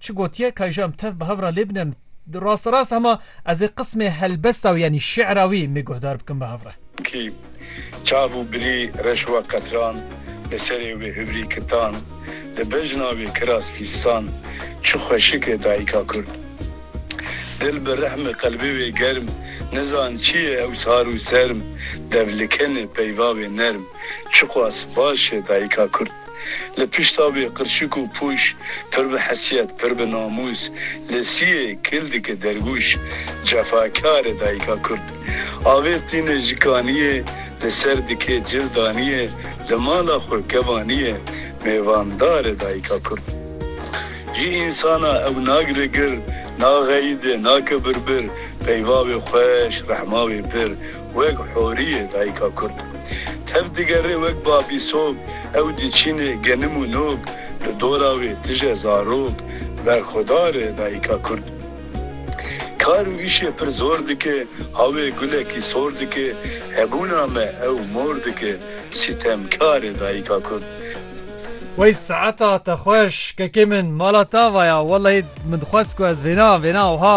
Çi gotiye kay ji em tev bi hev re lê bine em rasterast hema ez ê qismê helbesta wî yanî şî'ra wî mê guhdar bikim bi hev re. Kî çav û bilî reş wa qetran li serê wê hivrî kitan li bejna wê kiras fîstan çi xweşik e dayika kurd dil bi rehm e qelbê wê germ nizan çi ye ew sar û serm dev li ken e peyva wê nerm çi qas baş e dayika kurd. Li pişta wê qirçik û pûş, pir bi hesiyet, pir bi namûs, li siyê kildike dergûş, cefakar e dayika kurd. Avêt tîne ji kaniyê, li ser dikê cil daniyê, li mala xwe kevaniyê, mêvandar e dayika kurd. Ji însana ew nagire gir, naxeyide, nake birbir, peyva wê xweş, rehma wê pir, Wek Horiyê dayika Kurd tev digerê wek babî sog ew diçînê genim û nog li dora wê tije zarok berxwedar e dayika Kurd kar û îşê pir zor dike hawê gulekî sor dike hebûna me ew mor dike sîtemkar e dayika Kurd. Wey saeta te xweş kekê min mala ta vaya wellahî min dixwest ku ez vêna vêna wiha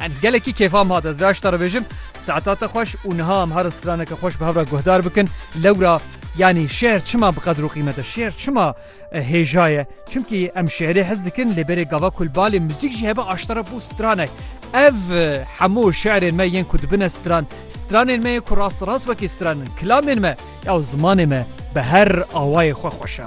And gelekî kêfa min hat ez vê aşta re bêjim saeta te xweş û niha em harin straneke xweş bi hev re guhdar bikin lewra yanî şêr çima bi qedr û qîmet e şêr çima hêja ye çimkî em şêrê hez dikin lê berê gava kul balê muzîk jî hebe aşta re bû stranek ev hemû şerên me yên ku dibine stran stranên me ku rast rast wekî stranin kilamên me ew zimanê me bi her awayê xwe xweşa.